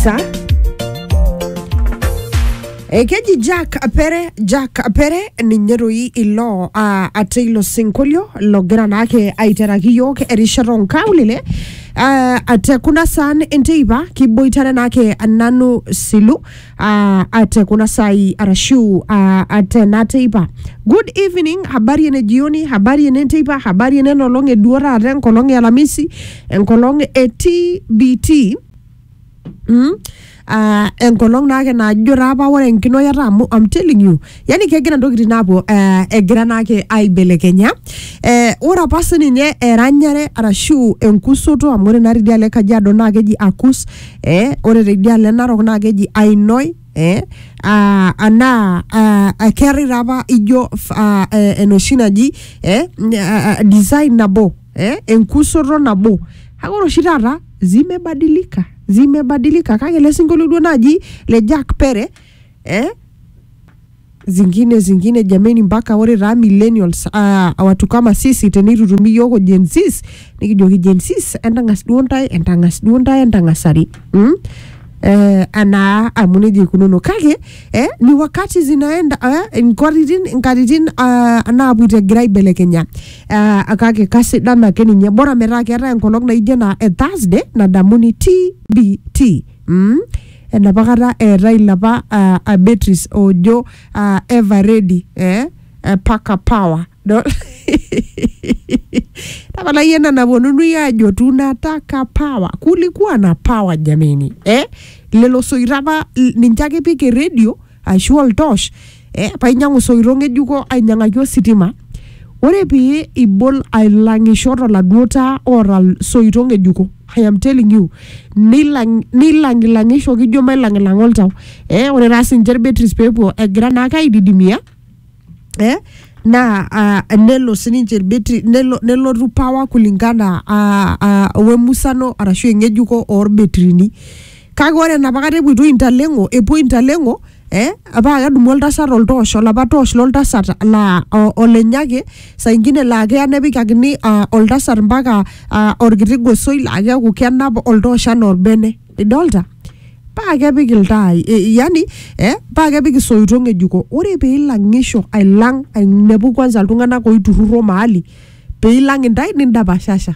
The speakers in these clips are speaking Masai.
kabisa ekeji jack apere jack apere ninye doi ilo uh, ate ilo sinkolio logira naake aiteraki yook erishata onkaulele uh, ate kuna saan enteipa kiboitare naake nanu silu uh, ate kuna sai arashu uh, ate na teipa good evening habari ene jioni habari ene nteipa habari ene nolong eduo taata enkolong e alamisi enkolong e tbt Mm? Uh, enkolong naake najo taa apa ore enkinoyata amu I'm telling you yani kegira ntokitin aapuo uh, egira naake aibelekenya eh, ore apa sininye eranyare arashu enkusoto amu ore naa tidialo e kajiado naa keji akus eh, ore tidialo e narok naa keji ainoi eh, uh, anaa uh, keetae taa apa ijo uh, eh, enoshi naji eh, uh, design nabo eh, enkusoto nabo kake ore oshi taata zimebadilika zimebadilika kake ele sinkolio duo naaji le Jack Pere eh, zingine zingine jameni mpaka ore taa millennials uh, watu kama sisi tenitutumi yioko Gen Zs nikijoki Gen Zs entang'as duo ntae entang'as duo ntae entang'asari mm? eh, anaa amu nejia ikununo kake eh, ni wakati zinaenda eh, nkatitin nkatitin uh, naapuoito egira aibelekenya Ah, kake kasidan ake ninye bora metaa keetae enkolong naijo ena e Thursday nadamuni TBT mm? enapa kata eetae ilapa ah, ah, batteries oojo ah, ever ready eh? eh, paka power Dol? tapala yie ena naponunui aajo tunataka power kulikuwa na power jameni eh? lelo soito apa l- ninche ake ipik eredio ashu oltosh eh, painyiang'u isoito ng'ejuko ainyiang'aki ositima ore pee ibol ailang'isho toladuo taa oota isoito ng'ejuko I am telling you nilang nilang'ilang'isho kijo mailang'ilang'a oltau eh, ore taa sinche irbetris peepuo egira naake aididimia eh, naa ah, nelo sininche irbetri nelo, nelotu power kulingana ah, ah, wemusano arashu eng'ejuko orbetrini kake ore enapakata epuoitoi intaleng'o epuo intaleng'o eh, paa kedumu oltasat oltoosh olapa toosh loltasat laa o- olenye ake saa ingine laa keya nepikakini ah, oltasat mpaka ah, orkiti gosoi laa keeku kenap oltoosh anaa orbene idolta paa kepik iltaai e, yani eh, paa kepik isoito ng'ejuko ore peilang'isho ailang ainepu kwanza iltung'anak oiturruro mahali peilang intae nindapashasha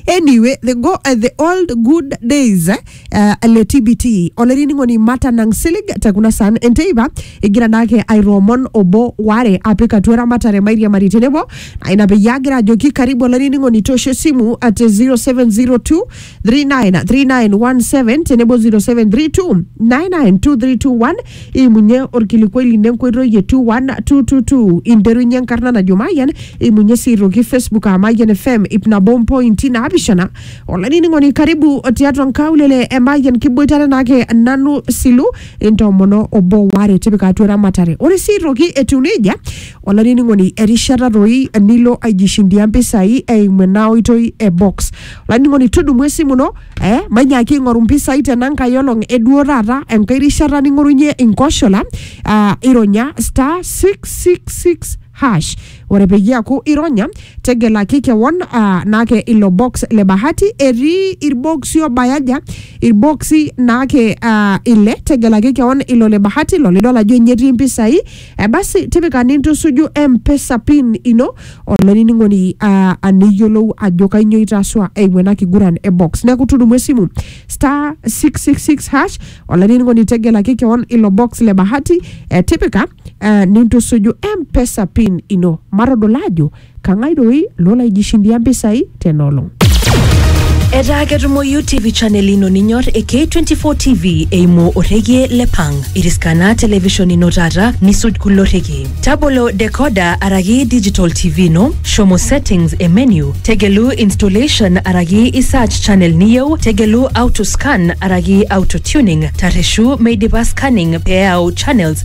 anyway the, go, uh, the old good days eh, uh, le tbt olainining'oni mata nang silig te kuna san enteipa egira naake aitoomon obo ware apik atua eramatare mairiamari tenebo ina peyie agira ajoki karibu olainining'oni toosho esimu at 0702 393917 tenebo 0732 992321 imunye orkilikuai lino enkoitoi e 21222 interunye enkarna najo mayian imunye sii aitoki facebook aa mayian fm ip nabo mpointi naapishana olainining'oni karibu tiatua nkaulele e mayian kiboitare naake nanu silu intoomono obo waare tipika atua eramatare ore sii aitoki etiu nejia Olainining'oni, erishata doi nilo aijishindia mpisai eimu ena oitoi e box. Olainining'oni, tudumu esimu ino eh, mainyaaki aing'oru mpisai tena nkae olong e duo taata enkae rishata ning'orunye inkoshola ah, ironya star 666 hash. Ore peyie eaku ironya, tegelaki kewon ah, naake ilo box le bahati. Etii ilboksi obaya aja? Ilboksi naake ah, ile, tegelaki kewon ilo le bahati, ilo lidol ajo ninye etii mpisai. Eh, basi tipika nintusuju mpesa pin ino olainining'oni uh, aniyiolou ajo kainyoo itaasua eimu ena kiguran e box neeku tudumu esimu star 666 hash olainining'oni tegelaki kewon ilo box le bahati eh, tipika eh, nintusuju mpesa pin ino matodol ajo Kang'ai doi lolaijishindia mpisai tena olong? Etaa ketumoyu TV channel ino ninyor e K24 TV eimu orrekie le Pang. Iriskana television ino taata nisuj kulo rrekie. Tabolo decoder araki digital TV ino, shomo settings e menu, tegelu installation araki i search channel niyieu, tegelu auto scan araki auto tuning, tarreshu meidipa scanning pee eyau channels